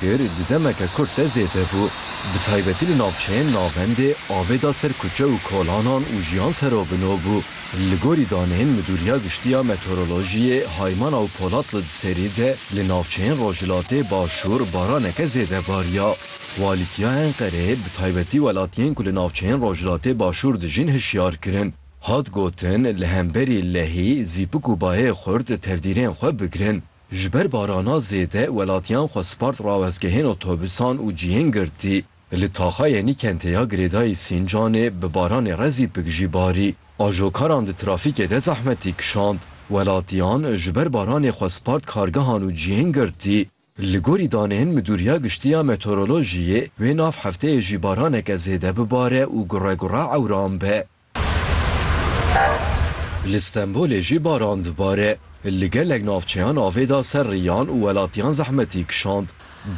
Kir di demeke kurt de zêde bû, bi taybetî li navçeyên navendê avê da ser kuçe û kolanan û jiyan ser o bino bû. Li gorî daneyên Midûriya Giştî ya Meteorolojiyê, Haymana û Polatlı di serî de li navçeyên Rojhilatê Başûr baraneke zêde bariya. Walîtiya Enqereyê bi taybetî welatiyên ku li navçeyên Rojhilatê Başûr dijîn hişyar kirin. Hat gotin li hemberî lehî, zîpik û bayê xurt tevdîrên xwe bigirin. Ji ber barana zêde welatiyan xwe spart rawestgehên otobûsan û cihên girtî. Li Taxayê Nîkentê ya girêdayî Sîncanê bi baranê rezî pik jî barî. Ajokaran di trafîkê de zehmetî kişand. Welatiyan ji ber baranê xwe spart kargehan û cihên girtî. Li gorî daneyên Midûriya Giştî ya Meteorolojiyê wê nav hefteyê jî baraneke zêde bibare û gure gure ewran be. Li Stenbolê jî baran dibare. Li gelek navçeyan avê da ser riyan û welatiyan zehmetî kişand.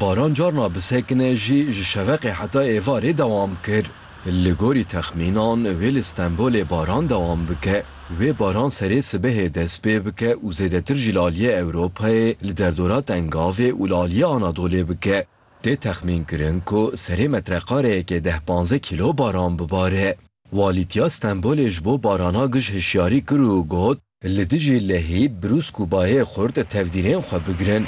Baran carna bi sekine jî ji şeveqê heta êvarê dewam kir. Li gorî texmînan wê li Stenbolê baran dewam bike. Wê baran serê sibehê dest pê bike û zêdetir jî li aliyê Ewropayê, li derdora Tengavê û li aliyê Anadolê bike. Tê texmînkirin ku serê metreqareyekê deh panzdeh kîlo baran bibare. Walîtiya Stenbolê ji bo barana gij hişyarî kir û got, Li dijî lehî, brûsk û bayê xurt tevdîrên xwe bigirin.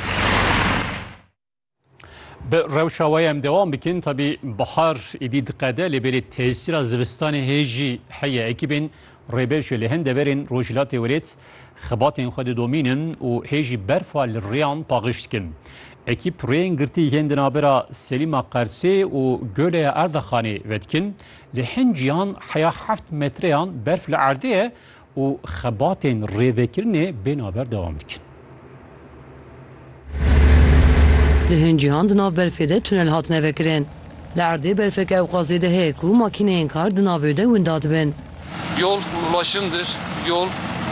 Bi rewşa wê em dewam bikin, tevî bihar êdî diqede lê bêrî tesîra zivistanê hê jî heye. Ekîbên Rêber jî li hin deverên Rojhilatê Wêrêt xebatên xwe didomînin û hê jî berfa li rêyan paqij dikin. Ekîp rêyên girtî yên di navbera Selîma Qersê û Göleya Erdexanê ve dikin. Li hin cîhan heya heft metreyan berf li erdê ye û xebatên rêvekirinê bê navber dewam dikin. Li hin cîhan di nav berfê de tunel hatine vekirin. Li erdê berfeke ewqazê de heye ku makîneyên kar di navê de winda dibin. Yol ulaşımdır, yol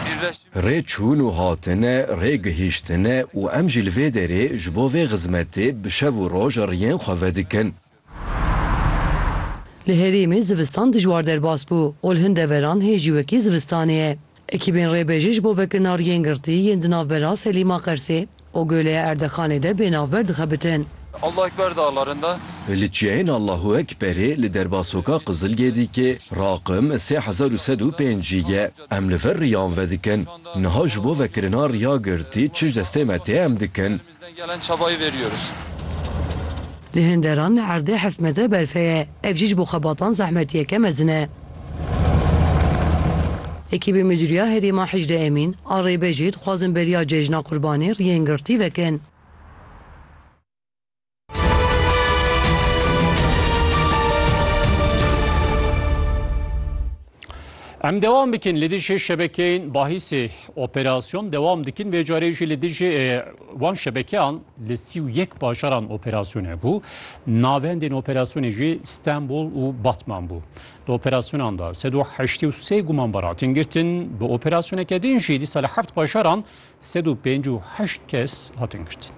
birleşim. Rê çûn û hatine, rê gihîştine û em jî li vê derê ji bo vê xizmetê bi şev û roj riyên xwe vedikin. Li herêmê zivistan dijwar derbas bû û li hin deveran hê jî wekî zivistanê ye. Ekîbên rêbêjê ji bo vekirina riyên girtî yên di navbera Selîma Qersê û Göleya Erdexanê de bê navber dixebitin. Allahu Ekber de alerinde. Li çiyayên Allahu Ekberê li derbasoka Qizilgedîkê raqim sê hezar û sed û pênc jî ye. Em li vir riyan vedikin. Niha ji bo vekirina riya girtî çi ji destê me tê em dikin? Li Hinderan li erdê heft metre berfê ye, ev jî ji bo xebatan zehmetiyeke mezin e. Ekîbê Mudîriya Herêm a Hicrê Emîn a Rêbejê dixwazin beriya cejna Qurbanê riyên girtî vekin. Em dewam bikin li dijî şebekeyên bahîsê operasyon dewam dikin vê carê jî li dijî wan şebekeyan li sî û yek bajaran operasyon hebû. Navendên operasyonê jî Stenbol û Batman bû. Di operasyonan de sed û heştê û sê gumanbar hatin girtin. Bi operasyoneke din jî dîsa li heft bajaran Sed û pênc û heşt kes hatin girtin.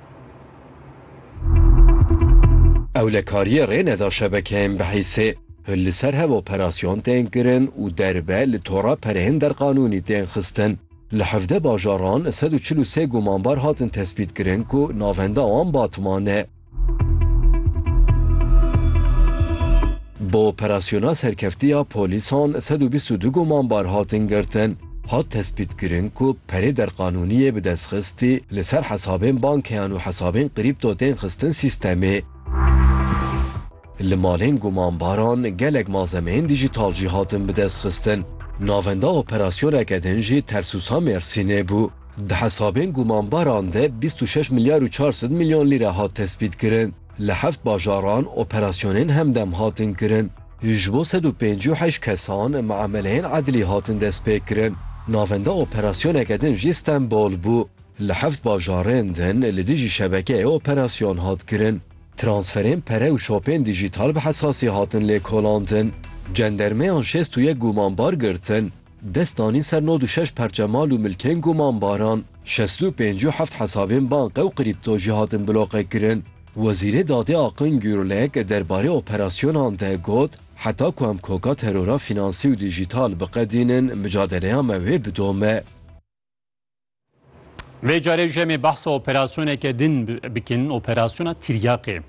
Ewlekariyê rê neda şebekeyên BHIS'ê. Li ser hev operasyon tên kirin û derve li tora pereyên derqanûnî tên xistin. Li hevdeh bajaran sed û çil û sê gumanbar hatin tespîtkirin ku navenda wan Batman e. Bi operasyona serkeftiya polîsan sed û bîst û du gumanbar hatin girtin. Hat tespîtkirin ku perê derqanûniyê bi destxistî li ser hesabên bankeyan û hesabên krîpto tên xistin sîstemê. Li malên gumanbaran gelek malzemeyên dîjîtal jî hatin bidestxistin. Navenda operasyoneke din jî Tersusa Mêrsînê bû. Di hesabên gumanbaran de bîst û şeş milyar û çar sed milyon lîre hat tespîtkirin. Li heft bajaran operasyonên hemdem hatin kirin. Ji bo sed û pêncî û heşt kesan miameleyên edlî hatin destpêkirin. Navenda operasyoneke din jî Stenbol bû. Li heft bajarên din li dijî şebekeyê operasyon hat kirin. Transferên pere û şopên dîjîtal bi hesasî hatin lêkolandin. Cendermeyan şêst û yek gumanbar girtin. Dest danîn ser nod û şeş perçe mal û milkên gumanbaran. Şestu û pênc û heft hesabên banke û krîpto jî hatin bloqekirin. Wezîrê Dadê Akın Gürlek derbarê operasyonan de got, Heta ku em koka terora fînansî û dîjîtal biqedînin, micadeleya me wê bidome. Vê carê jemê behsa operasyoneke din bikin, operasyona Tiryaqê.